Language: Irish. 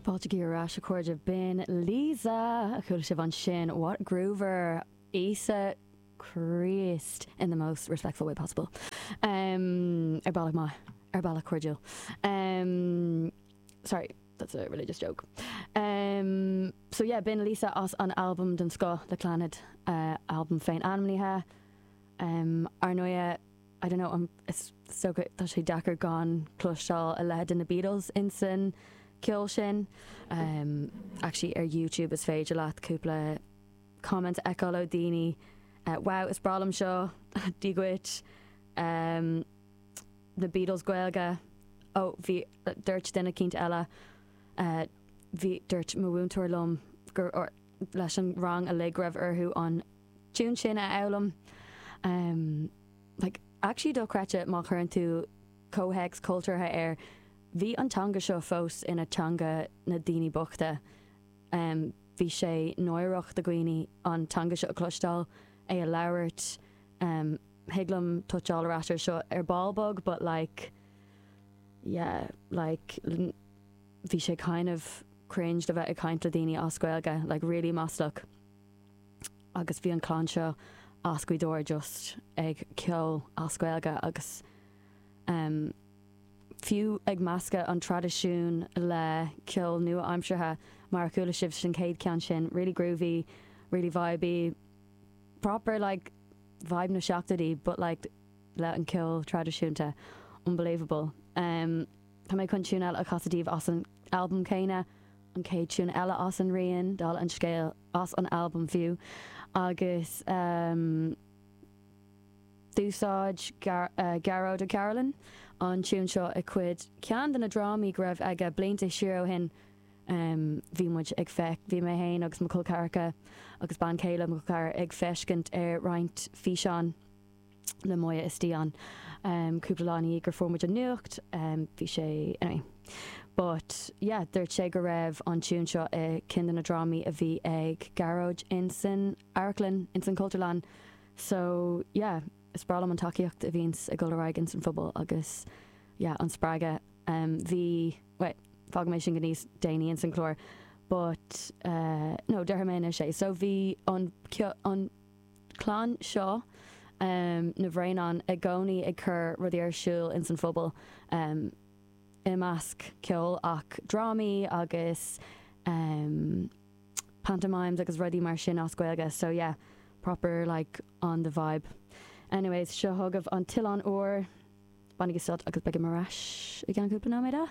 Fáiltigí ar ais a chairde B'in Liza a chuala sibh ansin What Groover? Íosa Críost in the most respectful way possible. Ar bealach maith, ar bealach cairdiúil. Sorry, that's a religious joke. So yeah, b'in Liza as an albam den scoth le Clannad, albam féin-ainmnithe. Ar ndóighe. I don't know, is dócha, tá sé deacair gan cloisteáil a leithéid de na Beatles insan ceol sin. Actually ar YouTube is féidir leat cúpla comment a fheiceáil ó daoine wow is breá liom seo, dia dhuit, na Beatles Gaeilge, ó bhí dúirt duine eicínt eile bhí dúirt mo mhúinteoir liom gur leis an rang uilig go raibh orthu an tune sin a fhoghlaim. Like, actually dochreidte má chuireann tú comhthéacs cultúrtha air. Bhí an teanga seo fós ina teanga na daoine bochta. Bhí sé náireach do dhaoine an teanga seo a chloisteáil, é a labhairt. Thig liom toucháil ar ais air seo ar ball beag but like, yeah, like, bhí sé kind of cringe le bheith ag caint le daoine as Gaeilge, like really maslach. agus bhí an clann seo as Gaoth Dobhair just ag ceol as Gaeilge agus em fiú ag meascadh an traidisiún le ceol nua-aimseartha mar a chuala sibh san chéad ceann sin, really groovy, really vibey, proper like vibe na seachtóidí but like le an ceol traidisiúnta, unbelievable. Em tá mé chun tune eile a chasadh daoibh as an albam céanna, an chéad tune eile as an rian, dála an scéil, as an albam fiú, agus d'úsáid Gearóid Ó Cairealláin an tiún seo i cuid, ceann de na drámaí go raibh aige blianta siar ó shin. Bhí muid ag feic, bhí mé féin agus mo chol ceathracha agus bean chéile mo chol ceathrair ag feiscint ar roinnt físeán. le Moya istigh ann em cúpla lá ina dhiaidh gur fuair muid an nuacht em bhí sé anyway but yeah dúirt sé go raibh an tiún seo i ceann de na drámaí a bhí ag Gearóid in san amharclann in san Chultúrlann so yeah is breá liom an tacaíocht a bhíonns ag dul ar aghaidh in san phobal agus yeah an spreagadh em bhí wait fág mé sin go níos déanaí in san chlár but eh no deir mé anois é so bhí an cio an clann seo na Braonáin i gcónaí ag cur rudaí ar siúl ins an phobal, i measc ceoil ach drámaí agus pantomimes agus rudaí mar sin as Gaeilge, so yeah, proper like on the vibe. Anyways, seo chugaibh An tOileán Úr, bainigí sult agus beidh mé ar ais i gceann cúpla nóiméad.